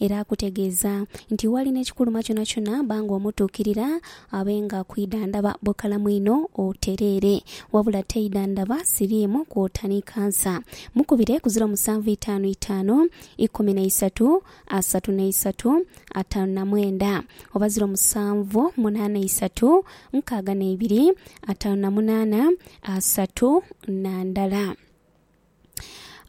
Era akutegeeza nti wali n'ekikuluma kyonakyona ba nga omutuukirira, abe nga kwidhandhaba bukalamu inho otereere. Wabula teidhandhaba siriimu kwota ni kansa. Mukubire ku ziro musanvu itaanu itaanu, ikumi na isatu, asatu na isatu, ataanu na mwenda, oba ziro musanvu munaana isatu, nkaaga na ibiri, ataanu na munaana, asatu, na ndala.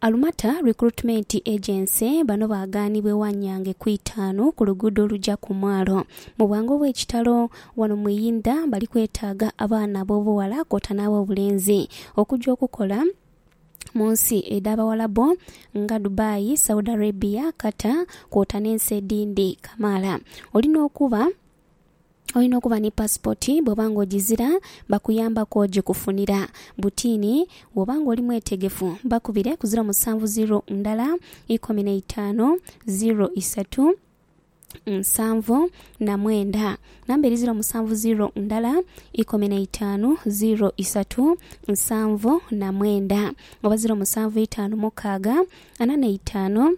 Alumata Recruitment Agency bano bagaanibwa ewa Nyange ku itaanu ku luguudo oluja ku mwalo. Mu bwangu obw'ekitalo wano mu Iyinda bali kwetaaga abaana ab'obughala kwota n'ab'obulenzi okuja okukola mu nsi edh'Abawalabu nga Dubai, Saudi Arabia, Qatar kwota n'ensi edhindi kamaala. Oli n'okuba. Olina okuba ni pasipoti, bwoba nga ojizira bakuyambaku ojikufunira. Butini, Bwoba nga oli mwetegefu bakubire ku ziro musanvu ziro ndala ikomi na itaanu ziro isatu nsanvu na mwenda. Namba eri ziro musanvu ziro ndala ikomi na itaanu ziro isatu nsanvu na mwenda oba ziro musanvu itaanu mukaaga ana na itaanu.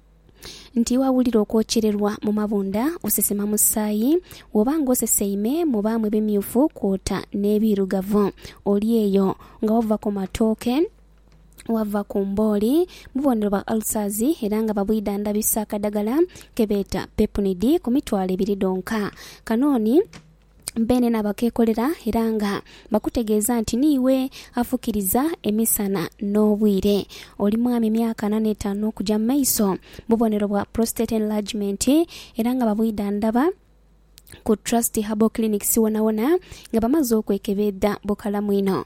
nti wawulira okwokyererwa mu mabunda, osesema musaayi, woba nga oseseime mubaamu ebimyufu kwota n'ebiirugavu, oli eyo nga wava ku matooke, wava ku mbooli, bubonero bwa ulcers era nga babwidhandhabisa akadagala kebeeta Pepnid ku mitwalo ebiri dhonka. Kano ni. beenena bakeekolera era nga bakutegeeza nti niiwe afukiriza emisana n'obwire. Oli mwami myaka ana n'etaanu okuja mu maiso. Bubonero bwa prostate enlargement era nga babwidhandhaba ku Trust Herbal Clinics wonawona nga bamaze okwekebeedha bukalamu inho.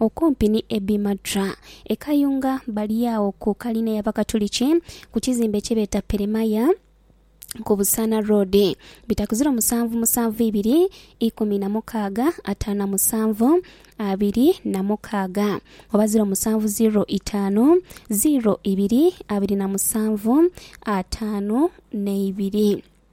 Okumpi ni Ebi Madra, e Kayunga, bali agho ku kalina y'Abakatuliki ku kizimbe kye beeta Peremaya ku Busaana Road. Bitakuziro musanvu musanvu ibiri ikumi na mukaaga ataanu na musanvu abiri na mukaaga oba ziro musanvu ziro itaanu ziro ibiri abiri na musanvu ataanu na ibiri.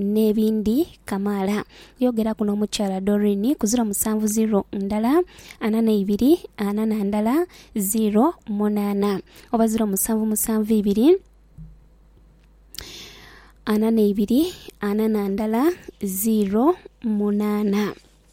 n'ebindi kamaala. Yogeraku n'omukyala Doreen ku ziro musanvu ziro ndala ana n'eibiri ana na ndala ziro munaana oba ziro musanvu musanvu ibiri ana n'eibiri ana na ndala ziro munaana.